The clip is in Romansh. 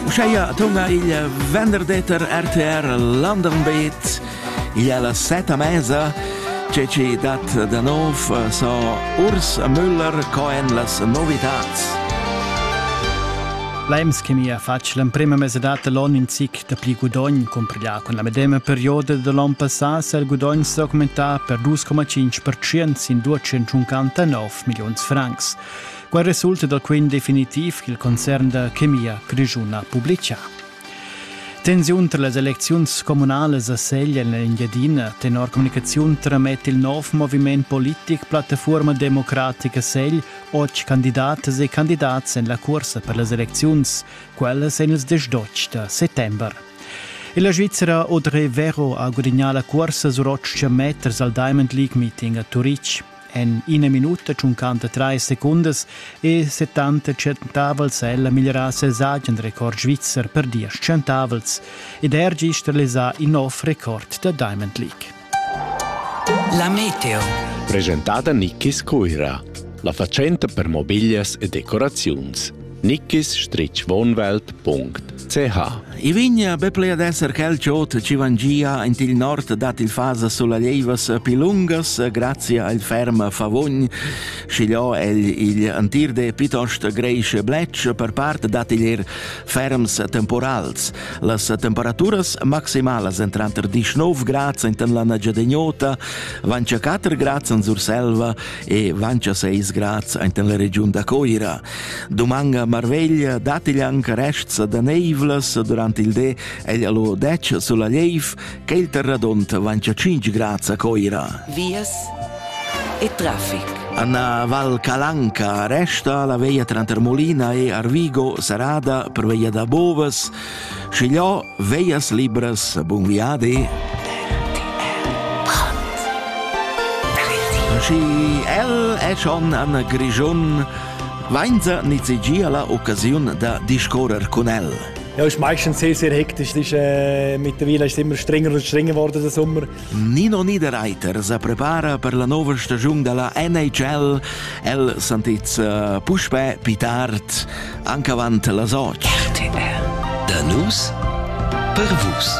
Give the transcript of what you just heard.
Uscheia atonga il venderdeter RTR London Beat il alla seta mesa ce ci dat da nov so Urs Müller coen las novitats. L'AIMS che mi ha fatg l'emprima mesedata l'on in zic da pli gudogn cumpriglià con la medema perioda de l'on passà se il gudogn s'è augmentà per 2,5% sin 259 millions francs. Quai resulta da quint definitiv ch'il concern da chemia grischuna publicha. Tensiun tra las elecziuns communalas a Segl en l'Engiadina tenor communicaziun tramet il nov moviment politic Plattafuorma democratica Segl otg candidatas e candidats en la cursa per las elecziuns, quellas en ils diesch d'otg da settembre. E la Svizzera Audrey Vero ha gudagnà la cursa sur otg meters al Diamond League Meeting a Turitg. En ina minuta tschuncanta trais secundas e 70 centavels è la migliorà ses agen record svizzer per diesch centavels ed er gist realisà in nov record da Diamond League. La meteo. Presentada Nicky Scuira, la fatschenta per mobiglias e decoraziuns. nickisstrichwohnwelt.ch I vigna be plea d'esser quel chot ci vangia int il nord dat il fasa sulla leivas pi lungas grazia al ferm favogn schigliò el il antir de pitost greisch blech per part dat il er ferms temporals las temperaturas maximalas entranter 19 grads int la Nagiadegnota vancia 4 grads in Surselva e vancia 6 grads int la regiun da Coira Dumanga marveglia datti anche rests da neivlas durant il di egl allo detg sulla leiv che il terradont vancia 5 grad a Coira. Vias e traffic. Anna Val Calanca resta la veia tranter Molina e Arvigo serrada per veia da Bovas, scigliò veias libras bun viadi. Și el e schon an Grigion Weinzer nizzegia la occasiun da discorrer cun el. Ja, ist meistens sehr, sehr hektisch. Ist, äh, mittlerweile ist es immer strenger und strenger geworden, der Sommer. Nino Niederreiter se prepara per la nuova stagione della NHL. El sentits äh, puspè pitart anche avant la Soch. RTL. Der News per Vus.